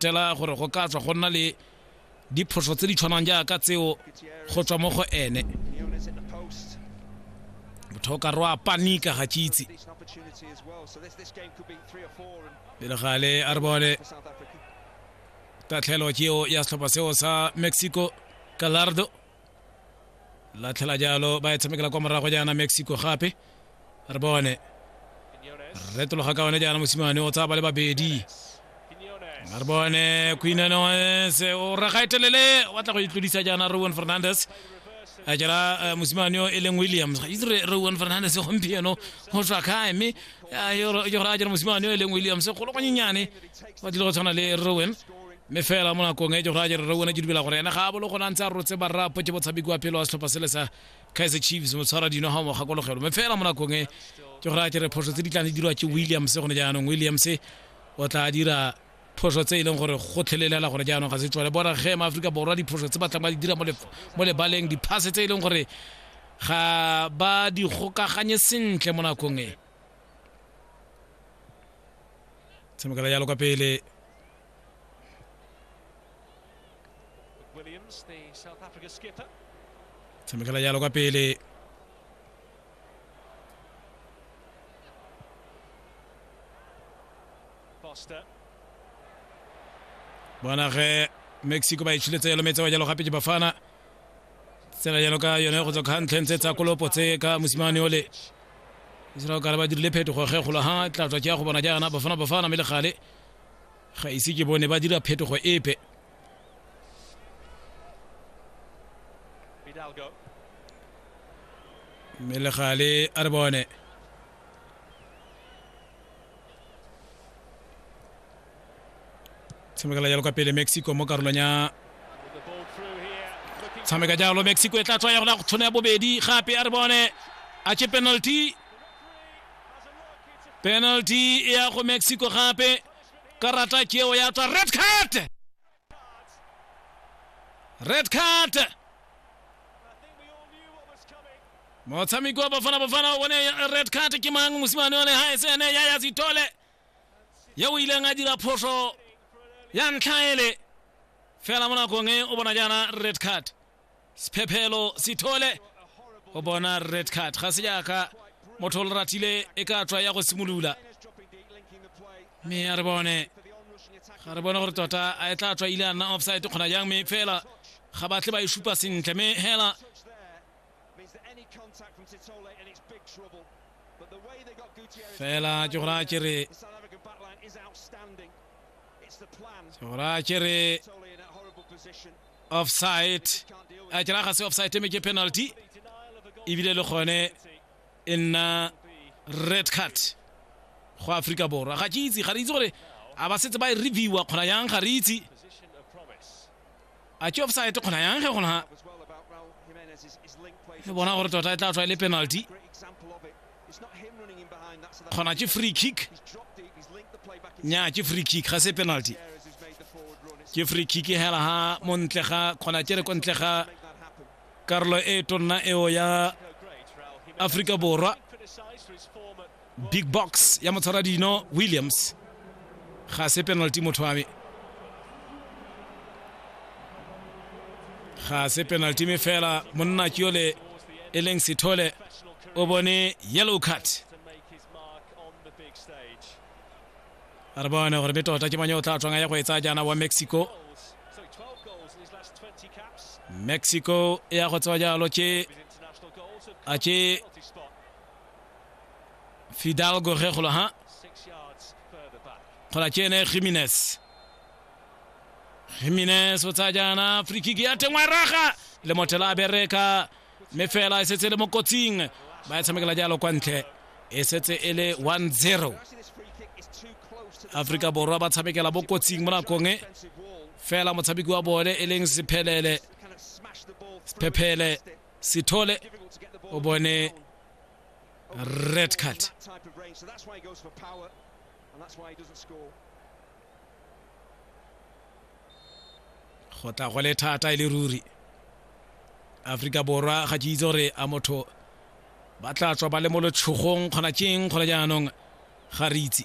tela gore go ka tswa go nna le diphoso tse di tshwanang jaaka tseo go tswa mo go ene motho o ka re wa panika ga kitse pele gale a re bone tatlhelo ke eo ya setlhopha seo sa mexico galardo latlhela jalo ba e tshamekela kwa morago jaana mexico gape re bone retologa ka one jaana mosimane o tsaya ba le babedi re bone queenanoes o raga etelele wa tla go itlodisa jaana rowan fernandes a jela eh, mosimane yo e leng williams ga itse re rowan fernandes gompieno go tswa kae mme eh, yo- yo gore a jela mosimane yo e leng williams golo gonyenyane ba tlile go tshwana le rowan mme fela mo nakong e ke gore a jere rone ke dumela gore ene ga a bolo gona ntse a rotse barrapo ke botshabi kwa pele wa setlhopha sele sa kaiser chiefs motshwara dino ga mo gakologelo mme fela mo nakong e ke gore a jere phoso tse di tlang di dirwa ke williams gone jaanong williams o tla dira phoso tse e leng gore go tlhelelela gore jaanong ga se tswale bona ge ma aforika borwa diphoso tse ba tlang ba di dira mo lebaleng diphase tse e leng gore ga ba di gokaganye sentle mo nakong e tshamekela jalo kwa pele Williams, the South Africa skipper. tshamekela jalo kwa pele Foster. bona ge mexico ba itšhiletse jalo metse wa jalo gape ke bafana tsela jalo ka yone go tswa ka ntlheng tse tsa kolopo tse ka mosimane ole israel kare ba dirile phetogo ge kgolo ha tla tswa ke ya go bona jaana bafana bafana mme le gale ga ise ke bone ba dira phetogo epe mme legale a re bone tshamekela jalo kwa pele mexico mo karolong ya tshameka jalo mexico e tla tswa ya gona go tshone ya bobedi gape a re bone a che penalty penalty e ya go mexico gape karata ke eo ya tswa red card red card motshameki wa bafana bafana o bone red card ke mang mosimane one ga e se ene ya ya sitole ye o ileng a dira phoso ya ntlha ele fela mo nakong e o bona jaana red card sephephelo sithole o bona red card ga se jaaka motho o le ratile e ka tswa ya go simolola mme a re bone ga re bone gore tota a e tla tswa ile a nna offside kgona jang mme fela ga batle ba e supa sentle mme hela fela ke gore a kere ke gore a kere offside a kera ga se offside me ke penalty ebile le gone e nna red card go Africa Borwa ga ke itse ga re itse gore a ba setse ba e reviewa kgona yang ga re itse a ke offside kgona yang ge gona re bona gore tota e tla tswa e le penalty kgona ke free kick nya ke free kick ga se penalty ke free kick hela ha mo ntle ga kgona ke re ko ntle ga karolo e tonna eo ya aforika borwa big box ya motshwara dino williams ga se penalty motho wa me ga se penalty me fela monna ke yole e leng sethole o bone yellow card a re bone gore mme tota ke manye o tla tswanga ya go e tsaya jaana wa mexico mexico e ya go tsewa jalo ke a ke fidalgo ge golo ha gola ke ene jimenez jimenez o tsaya jaana free kick ya tengwa raga le mothela a bereka mme fela e setse e le mo kotsing ba e tshamekela jalo kwa ntle e setse e le 1-0 aforika borwa ba tshamekela mo kotsing mo nakong e fela motshameki wa bone e leng sephelele sephephele sithole o bone red card go tla go le thata e le ruri aforika borwa ga ke itse gore a motho ba tla tswa ba le mo letshogong kgona keng kgona jaanong ga re itse